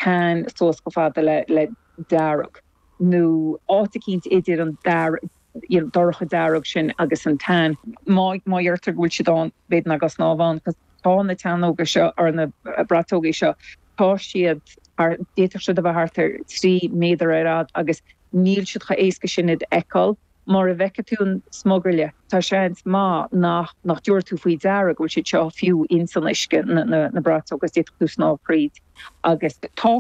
Tan suas chomh fada le dearg nó. áit eicínt idir an dorcha dearg sin agus an tan. Má dheirtear go bhfuil siad ann, b'fhéidir nach gá snámh ann agus tá na teannóga seo, or na bratógaí seo, tá siad thart, d'fhéadfadh siad a bheith thart ar trí méadar ar fhad agus níl siad chomh éasca sin a fheiceáil. Mara bhfeiceann tú an smugairle, tá seans maith nach nach dtabharfá tú faoi deara go bhfuil siad seo fiú ins an uisce, na na bratóga agus d'fhéadfadh tú snámh thríd agus tá tá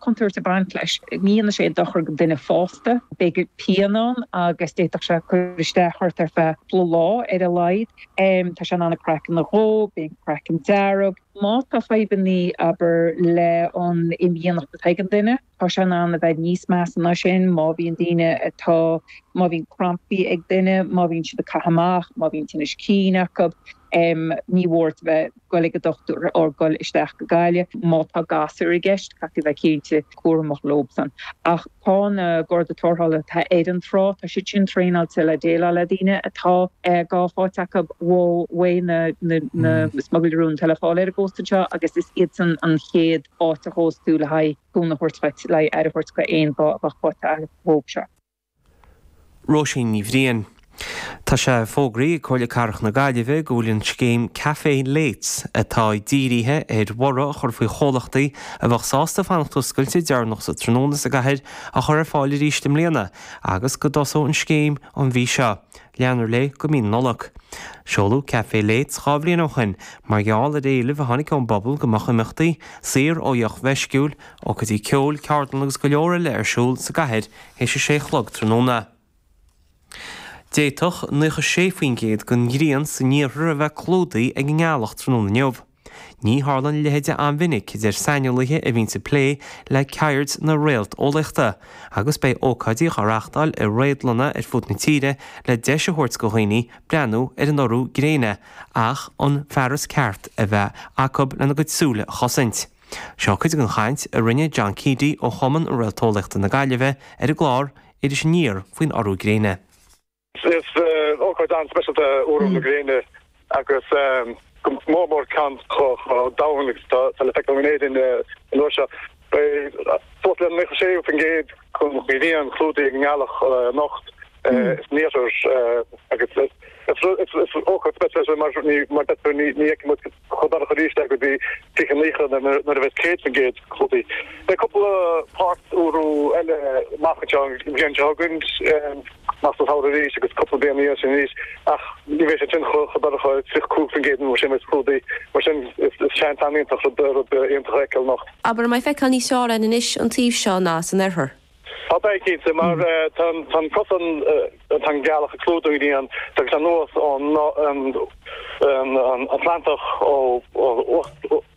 contúirt ag baint leis, ní dhéanfaidh sé dochar go dhuine fásta, beidh pian ann agus d'fhéadfadh sé cur isteach ort ar feadh cúpla lá ar a laghad. Tá sé in ann an craiceann a dhó, bíonn an craiceann dearg. Má tá fadhbannaí, abair, le an imdhíonacht atá ag an duine, Tá sé in ann a bheith níos measa ná sin, má bhíonn daoine atá, má bhíonn crampaí ag duine, má bhíonn siad ag caitheamh amach, má bhíonn tinnis cinn acu, ní mór duit a bheith ag dul ag an dochtúir or dul isteach go Gaillimh. Má tá gasúir i gceist, caithfidh a bheith cinnte cúramach leobsan. Ach tá na Garda Tarrthála atá ar an trá, tá siad sin traenáilte le déileáil le daoine atá gath faighte acu ó, uaidh na, na, na smugairlí róin atá le fáil ar an gcósta anseo agus is iadsan an chéad, áit a thosós tú le haghaidh cúnamh a thabhairt duit, le haghaidh aire a thabhairt go aon gha a bheadh faighte agat sa gcaoi seo. Róisín Ní Bhriain. Tá sé fógraithe ag Comhairle Cathrach na Gaillimhe go bhfuil an scéim Café Lates, atá díríthe ar bhorradh a chur faoi chomhlachtaí a bheadh sásta fanacht oscailte deireanach sa tráthnóna sa gcathair, á chur ar fáil arís i mbliana agus go dtosóidh an scéim an mhí seo. Leanfar léi go mí na Nollag. Seoladh Café Lates dhá bhliain ó shin mar gheall ar éileamh a tháinig ón bpobal go mbeadh imeachtaí, saor ó dheoch mheisciúil, ócáidí ceoil, ceardlanna agus go leor eile ar siúl sa gcathair théis a sé chlog tráthnóna. D'fhéadfadh 96% den ghrian san iarthar a bheith clúdaithe ag an ngealach tráthnóna inniu. Ní tharlann a leithéide an-mhinic, a deir saineolaithe a bhíonn ag plé le ceird na réalteolaíochta, agus beidh ócáidí á reáchtáil i réadlanna ar fud na tíre le deis a thabhairt go dhaoine breathnú ar an urú gréine ach an fearas ceart a bheith acu lena gcuid súile a chosaint. Seo cuid den chaint a rinne John Keady ó Chumann Réalteolaíochta na Gaillimhe ar an gclár Iris Aniar faoin urú gréine. Is ócáid an-speisialta é urú na gréine agus go mór mór ceann chomh domhain agus atá le feiceáil in Éirinn an uair seo. Beidh suas le 96% den ghrian clúdaithe ag an ngealach anocht san iarthar agus is ócáid speisialta é seo mar ní fheicfidh muid Chomh dorcha arís go dtí fiche nócha nuair a bheas 100% clúdaithe. Beidh cúpla páirt úrú eile amach anseo an bhliain seo chugainn, amach sa samhradh arís agus cúpla bliain ina dhiaidh sin arís, ach ní bheidh sé sin chomh dorcha, 25% nó mar sin, a bheas clúdaithe. Mar sin is seans iontach rud iontach a fheiceáil anocht. Abair, an mbeidh feiceáil níos fearr orthu anois an taobh seo ná san oirthear? Tá, beidh cinnte, mar tá an cosán, tá an ghealach ag clúdú an ghrian ag teacht anuas ón Atlantach, ó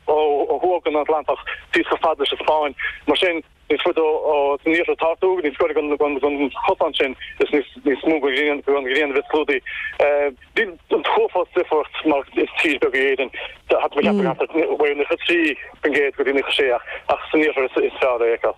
thuaidh den Atlantach síos chomh fada leis an Spáinn, mar sin níos faide san iarthar atá tú, níos gaire don chosán sin is níos mó den ghrian a bheas clúdaithe. Níl an t-uafás difríocht mar is tír bheag í Éirinn, ceapaim go gcaithfear ó 93% go dtí 96 ach san iarthar is fearr é a fheiceáil.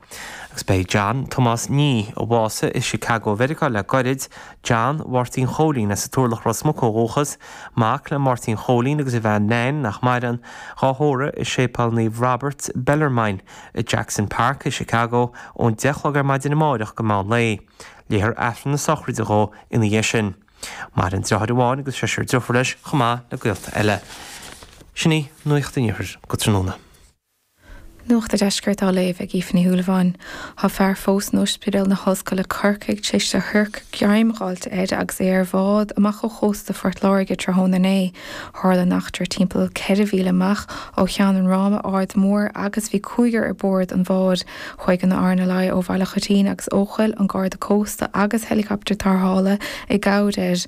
Agus beidh John Tomás Nee, a bhásaigh i Chicago Mheiriceá le gairid, John Mháirtín Chóilín as an Turlach Ros Muc ó dhúchas, mac le Máirtín Chóilín agus a bhean Nain, nach maireann, dhá thórramh i Séipéal Naomh Robert Bellarmine, i Jackson Park i Chicago ón deich chlog ar maidin amáireach go meán lae. Léifear Aifreann na sochraide dhó ina dhiaidh sin. Maireann deartháir amháin agus seisear deirfiúr leis chomh maith le gaolta eile. Sin í nuacht an Iarthair go tráthnóna. Nuacht an Deiscirt á léamh ag Aoife Ní Shúilleabháin. Tá fear fós in Ospidéal na hOllscoile Corcaigh tar éis do shiorc greim a fháilt air agus é ar bhád amach ó chósta Phort Láirge tráthnóna inné. Tharla an eachtra timpeall ceithre mhíle amach ó Cheann an Ráma, Aird Mhór agus bhí cúigear ar bord an bháid. Chuaigh an RNLI ó Bhaile Choitín agus Eochaill, an Garda Cósta agus heilicoptar tarrthála i gcabhair air.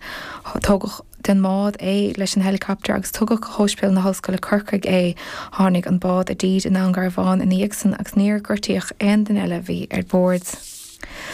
Tógadh. den mbád é leis an heileacaptar agus tugadh go hOspidéal na hOllscoile Corcaigh é. Tháinig an bád i dtír i nDún Garbhán ina dhiaidh san agus níor gortaíodh aon duine eile a bhí ar bord.